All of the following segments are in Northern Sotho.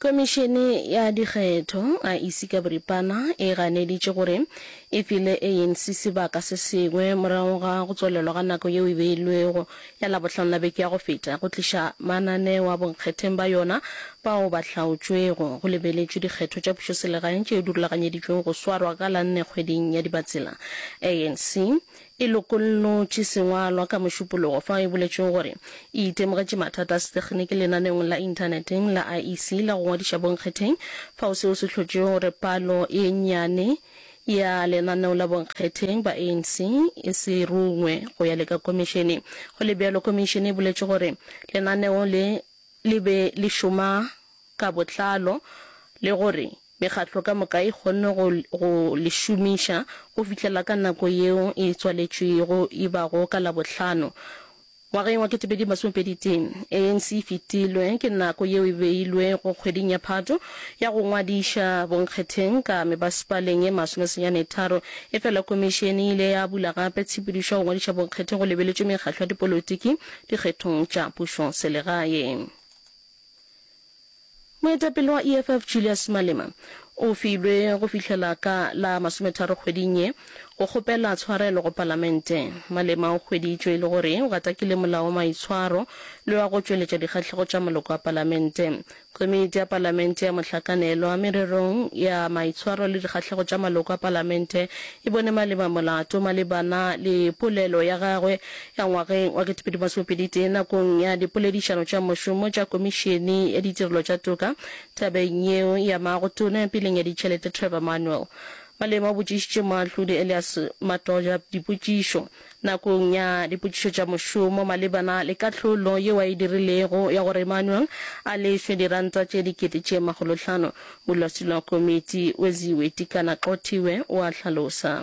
Komišene ya Dikgetho, IEC, ka boripana e ganeditše gore e file ANC sebaka se sengwe morago ga go tswalelwa ga nako yeo e beilwego ya Labohlano la beke ya go feta go tliša mananeo a bonkgetheng ba yona bao ba hlaotšwego. Go lebeletšwe dikgetho tša pušoselegaeng tšeo di rulaganyeditšwego go swarwa ka la nne kgweding ya Dibatsela. ANC E lokollotše sengwalwa ka Mošupologo fao e boletšwego gore e itemogetše mathata a setekginiki lenaneong la inthaneteng la IEC la go ngwadiša bonkgetheng, fao seo se hlotšego gore palo e nnyane ya lenaneo la bonkgetheng ba ANC e se rungwe go ya le ka Komišene. Go le bjalo, Komišene e boletše gore lenaneo le le be le šoma ka botlalo le gore Mekgatlo ka moka e kgonne go go le šomiša go fihlela ka nako yeo e tswaletšwego e bago ka Labohlano ngwageng wa 2021. ANC e fetilwe ke nako yeo e beilwego kgweding ya Phato ya go ngwadiša bonkgetheng ka mebasepaleng ye masome senyane tharo, efela Komišene e ile ya bula gape tshepedišo ya go ngwadiša bonkgetheng go lebeletšwe mekgatlo ya dipolotiki dikgethong tša pušoselegae. Moetapele wa EFF Julius Malema o filwe go fihlela ka la masometharo kgweding ye go kgopela tshwarelo go palamente. Malema o hweditšwe e le gore o gatakile molao wa maitshwaro le wa go tšweletša dikgahlego tša maloko a palamente. Komiti ya palamente ya mohlakanelwa mererong ya maitshwaro le dikgahlego tša maloko a palamente e bone Malema molato malebana le polelo ya gagwe Ya ngwageng wa ketepedi masome pedi tee nakong ya dipoledišano tša mošomo tša Komišene ya Ditirelo tša Toka tabeng yeo ya Maago Tona ya Peleng ya Ditšhelete Trevor Manuel Malema o botšišitše Moahlodi Elias Matoja dipotšišo nakong ya dipotšišo tša mošomo malebana le kahlolo yeo a e dirilego ya gore Manuel a lefšwe diranta tše dikete tše makgolohlano. Modulasetulo wa komiti Weziwe Tikana-Xothiwe o a hlalosa.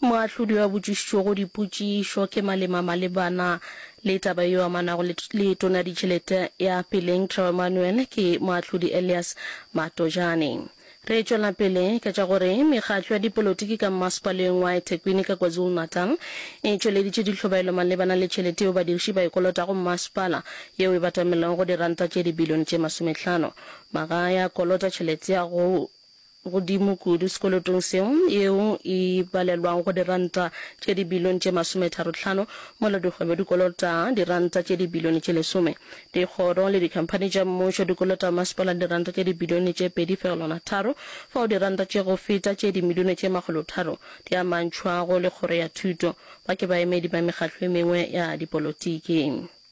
Moahlodi yo a botšišitšwego dipotšišo ke malema malebana le taba yeo amanago le Letona ya Ditšhelete ya Peleng Trevor Manuel ke Moahlodi Elias Matojane. Re tšwela pele ka tša gore mekgatlo ya dipolotiki ka mmasepaleng wa eThekwini ka KwaZulu-Natal e tšweleditše ditlhobaelo malebana le tšhelete yeo badiriši ba e kolotago mmasepala, yeo e batamelwago go diranta tše dibilione tše masometlhano. Magae a kolota tšhelete ya go godimo kudu sekolotong seo, yeo e balelwago go diranta tše dibilione tše masometharo-tlhano, mola dikgwebo di kolota diranta tše dibilione tše lesome. Dikgoro le dikhamphani tša mmušo di kolota masepala diranta tše dibilione tše pedi fegelwana tharo, fao diranta tše go feta tše dimilione tše makgolotharo di amantšhwago le Kgoro ya Thuto, ba ke baemedi ba mekgatlo e mengwe ya dipolotiki.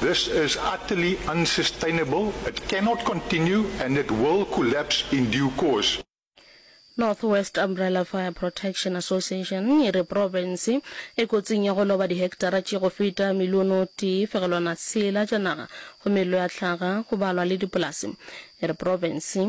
This is utterly unsustainable, it cannot continue and it will collapse in due course. North West Umbrella Fire Protection Association e re profense e kotsing ya go loba diheketara tše go feta miliono tee fegelwana tshela tša naga go mello ya hlaga go balwa le dipolase. E re profense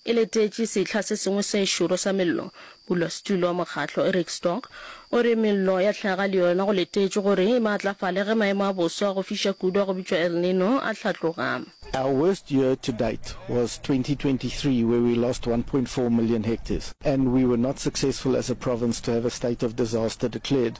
E letetše sehla se sengwe se šoro sa mello, modulasetulo wa mokgatlo Eric Stork o re, Mello ya hlaga le yona go letetšwe gore e maatlafale ge maemo a boso a go fiša kudu a go bitšwa El Nino a hlatloga. Our worst year to date was 2023 where we lost 1.4 million hectares and we were not successful as a province to have a state of disaster declared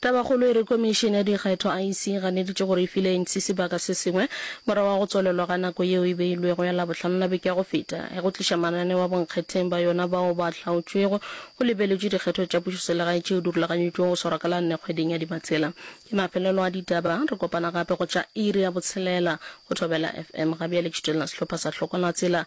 Tabakgolo e re Komišene ya Dikgetho, IEC, e ganeditše gore e file anc sebaka se sengwe morago ga go tswalelwa ga nako yeo e beilwego ya Labohlano la beke ya go feta ya go tliša mananeo a bonkgetheng ba yona bao ba hlaotšwego go lebeletšwe dikgetho tša pušoselegae tšeo di rulaganyetšwego go swarwa ka la nne kgweding ya Dibatsela. Ke mafelelo a ditaba. Re kopana gape go tša iri ya botshelela go Thobela FM. Ga bjale ke šutelela sehlopha sa Hlokola Tsela